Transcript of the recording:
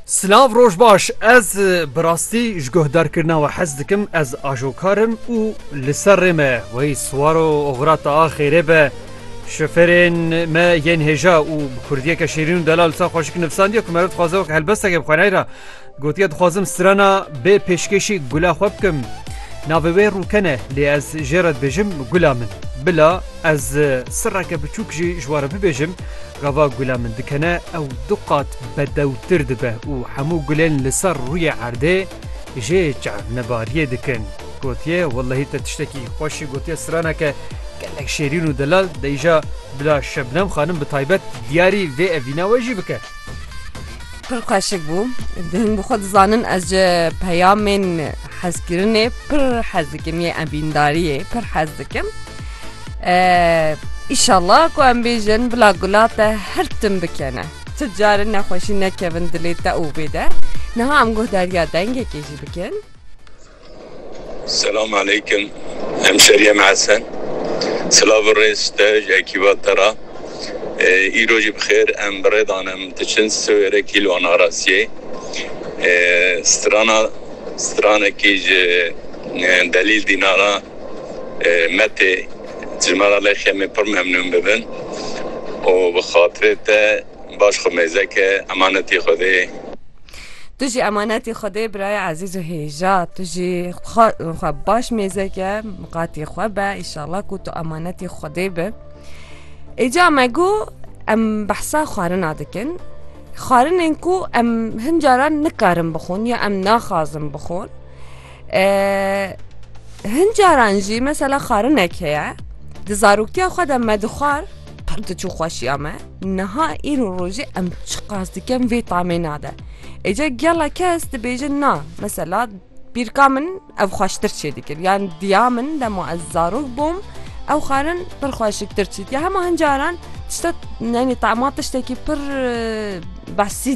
Silav roj baş ez bi rastî ji guhdarkirina we hez dikim ez ajokarim û li ser rê me weyî siwaro oxira ta a xêrê be şoferên me yên hêja û bi kurdiyeke şêrîn û delal sa xweşik nivsandiye ku meriv dixwaze wek helbesteke bixwenayî ra gotiye dixwazim strana bê pêşkêşî gula xwe bikim navê wê rûkene lê ez jê re dibêjim gula min bila ez sirreke biçûk jî ji ware bibêjim Gava gula min dikene ew du qat bedewtir dibe û hemû gulên li ser rûyê erdê jê çernibariyê dikin. Gotiye wellehî te tiştekî xweşî gotiye straneke gelek şêrîn û delal de îja bila Şebnem xanim bi taybet diyarî vê evîna we jî bike. Pir xweşik bû. Hin bi xwe dizanin ez ji peyamên hezkirinê pir hez dikim yê evîndariyê pir hez dikim. Îşallah ku em bêjin bila gula te her tim bikene. Ti carin nexweşî nekevin dilê te û bê de. Niha em guh derya dengekê jî bikin. Selam aleykim. Em şeriyê me esen. Silav û rêz te ji ekîba te re. Îro jî bi xêr em bi rê danim diçin siwêrê kîlo narasiyê. Strana stranekî ji delîl dînara. Me tê ji me re lê Xemê pir memnûn bibin û bi xatirê te baş xwe mêze ke emanetî Xwedê. Tu jî emanetî Xwedê birayê ezîz û hêja. Tu jî xwe xwe baş mêze ke miqatî xwe be îşallah ku tu emanetî Xwedê bi. Îca me got em behsa xwarina dikin. Xwarinên ku em hin caran nikarin bixwin ya em naxwazin bixwin. Hin caran jî mesela xarinek heye di zaroktiya xwe de me dixwar pir diçû xweşiya me niha îro rojê em çi qas dikem vê tamê nade êca gela kes dibêjin na mesela bîrka min ev xweştir çê dikir yan diya min dema ez zarok bûm ew xarin pir xweşiktir çît ya hema hin caran tişta nenê tama tiştekî pir besît